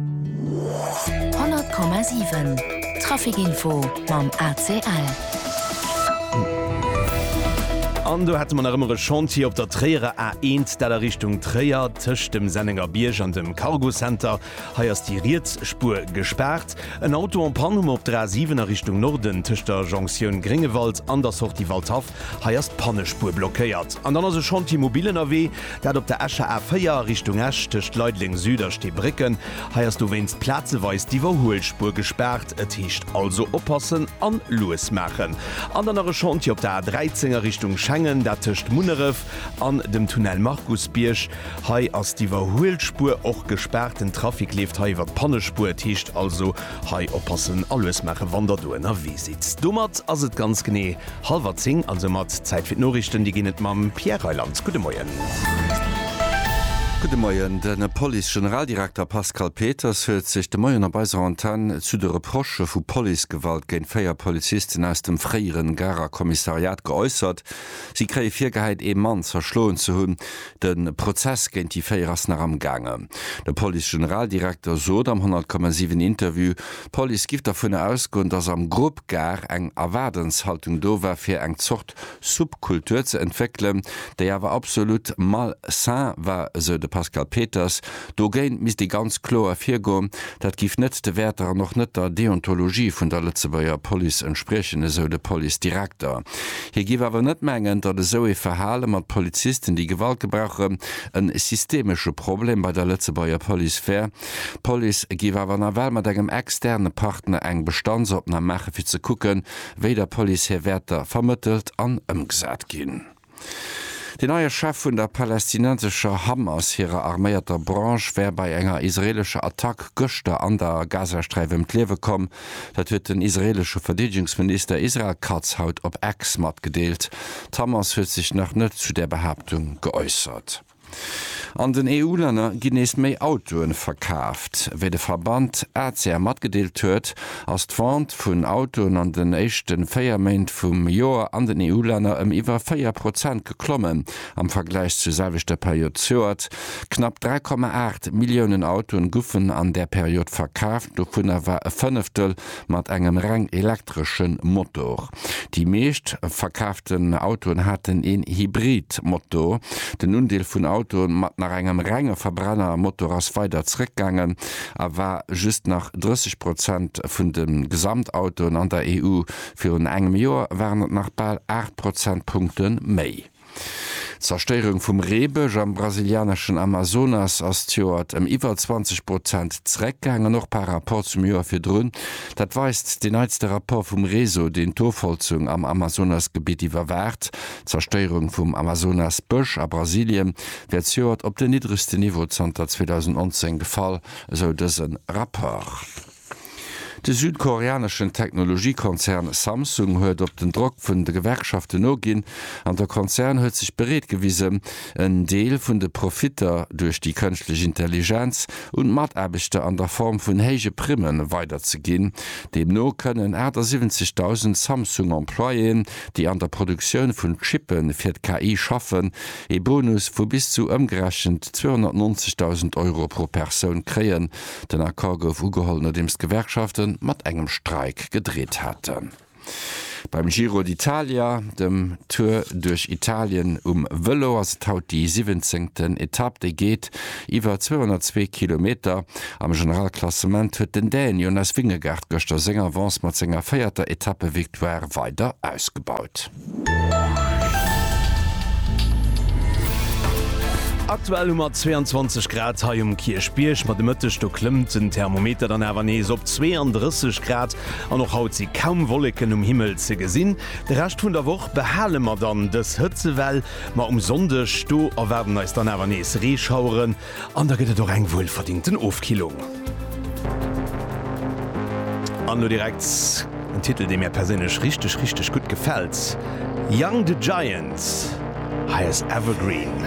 100,7 Trafic Info mam ACL. An do hätte mer nach ëmmer e Chantier op der Tréierer A1, dat a Richtung Tréier, tëscht dem Sennengerbierg an dem Cargocenter. Hei ass déi riets Spuer gespaart. En Auto en Panne hu mer op der A7 a Richtung Norden, tëscht der Jonktioun Gréngewald an der Sortie Waldhaff. Hei ass d'Pannespuer blockéiert an dann ass e Chantier mobil ënnerwee, dat op der Escher A 4 a Richtung Esch tëscht Leideleng Süd a Steebrécken. Hei ass dowéinst plazeweis d'Iwwerhuelspuer gespaart. Et heescht also oppassen an lues maachen. An dann nach e Chantier op der A 13 a Richtung Schengen, dat tëscht Munneref an dem Tunnel Markusbierg. Hei ass d'Iwwerhuelspuer och gespaart, den Trafic leeft hei iwwer d'Pannespuer. Et heescht also hei oppassen a lues maachen, wann der do ënnerwee sidd. Domat ass et ganz genee Halwer 10 ass e mat. Zäit fir d'Noriichten, déi ginn et mam Pierre Reyland. Gudde Moien. Gudde Moien. De Police-Generaldirekter Pascal Peters huet sech de Moien op eiser Antenn zu de Reprochë vu Policegewalt géint 4 Polizisten aus dem fréiere Garer Kommissariat geäussert. Si kréie virgehäit, ee Mann zerschloen ze hunn. De Prozess géint déi 4 ass nach am gaangen. De Police-Generaldirekter sot am 100,7 Interview, d'Police giff dervun ausgoen, datt am Grupp, d'Gare eng Erwaardenshaltung do war fir eng Zort Subkultur ze entwéckelen, déi awer absolut mal sain war, esou de Pascal Peters. Dogéint misst ee ganz kloer ervirgoen. Dat giff net de Wäerter an och net der Deontologie vun der Lëtzebuerger Police entspriechen, esou de Policedirekter. Hie giff awer net mengen, datt esou ee Verhale mat Polizisten, déi Gewalt gebrauchen, e systemesche Problem bei der Lëtzebuerger Police wär. D'Police géif awer nawell mat engem externe Partner eng Bestandsopnam maache fir ze kucken, wéi der Police hir Wäerter vermëttelt an ëmgesat ginn. Deen neie Chef vun der palästinensescher Hamas hirer arméierter Branche wär bei enger israeelescher Attack gëschter an der Gazasträif ëm d'Liewe komm. Dat huet den israeelesche Verdeedegungsminister Israel Katz haut op X matgedeelt. D'Hamas huet sech nach net zu där Behaaptung geäussert. An den EU-Länner ginn nees méi Autoe verkaaft. Wéi de Verband ACEA matgedeelt huet, ass d'Vente vun Autoen an den éischte 4 Méint vum Joer an den EU-Länner ëm iwwer 4 Prozent geklommen am Vergläich zur selwechter Period zejoert. Knapp 3,8 Milliounen Autoen guffen an där Period verkaaft, dovunner war e Fënneftel mat engem reng elektresche Motor. Déi meescht verkaaften Autoen haten een Hybrid-Motor. Den Undeel vun Autoen mat nach engem renge Verbrenner-Motor ass weider zréckgaangen a war just nach 30 Prozent vun de Gesamtautoen an der EU. Virun engem Joer waren et nach bal 8 Prozentpunkte méi. D'Zerstéierung vum Reebësch am brasilianeschen Amazonas ass d'Joert ëm iwwer 20 Prozent zeréckgaangen, och par Rapport zum Joer virdrun. Dat weist deen neitste Rapport vum Réseau, deen d'Ofholzung am Amazonasgebitt iwwerwaacht. D'Zerstéierung vum Amazonas-Bësch a Brasilien wär zejoert op den niddregste Niveau zanter 2019 gefall, esou dëse Rapport. De südkoreaneschen Technologiekonzern Samsung huet op den Drock vun de Gewerkschaften noginn an de Konzern huet sech bereet gewisen, en Deel vun de Profitter duerch déi kënschtlech Intelligenz un d'Mataarbechter an der Form vun héije Primme weiderzeginn. Deemno kënnen 78.000 Samsung-Employéen, déi an der Produktioun vun Chippe fir d'KI schaffen, ee Bonus vu bis zu ëmgerechent 290.000 Euro pro Persoun kréien, Den Accord gouf ugeholl nodeems d'Gewerkschafte mat engem Streik gedreet haten. Beim Giro d'Italia, dem Tour duerch Italien um Vëlo, ass et haut déi siwwenzéngten Etapp. Déi geet iwwer 202 Kilometer. Am Generalklassement huet den Dän Jonas Vingegaard gëschter seng Avance mat senger véierter Etappevictoire weider ausgebaut. Aktuell hu mer 22 Grad hei um Kierchbierg, ma de Mëtteg do klëmmt den Thermometer dann awer nees op 32 Grad an och haut si kaum Wolleken um Himmel ze gesinn. De Rescht vun der Woch behale mer dann dës Hëtzewell, ma um Sonndeg do erwaarden eis dann awer nees Reeschaueren. An da gëtt et och eng wuelverdingten Ofkillung. An elo direkt en Titel, dee mär perséinlech richteg, richteg gutt gefält, Young the Giant, hei ass Evergreen.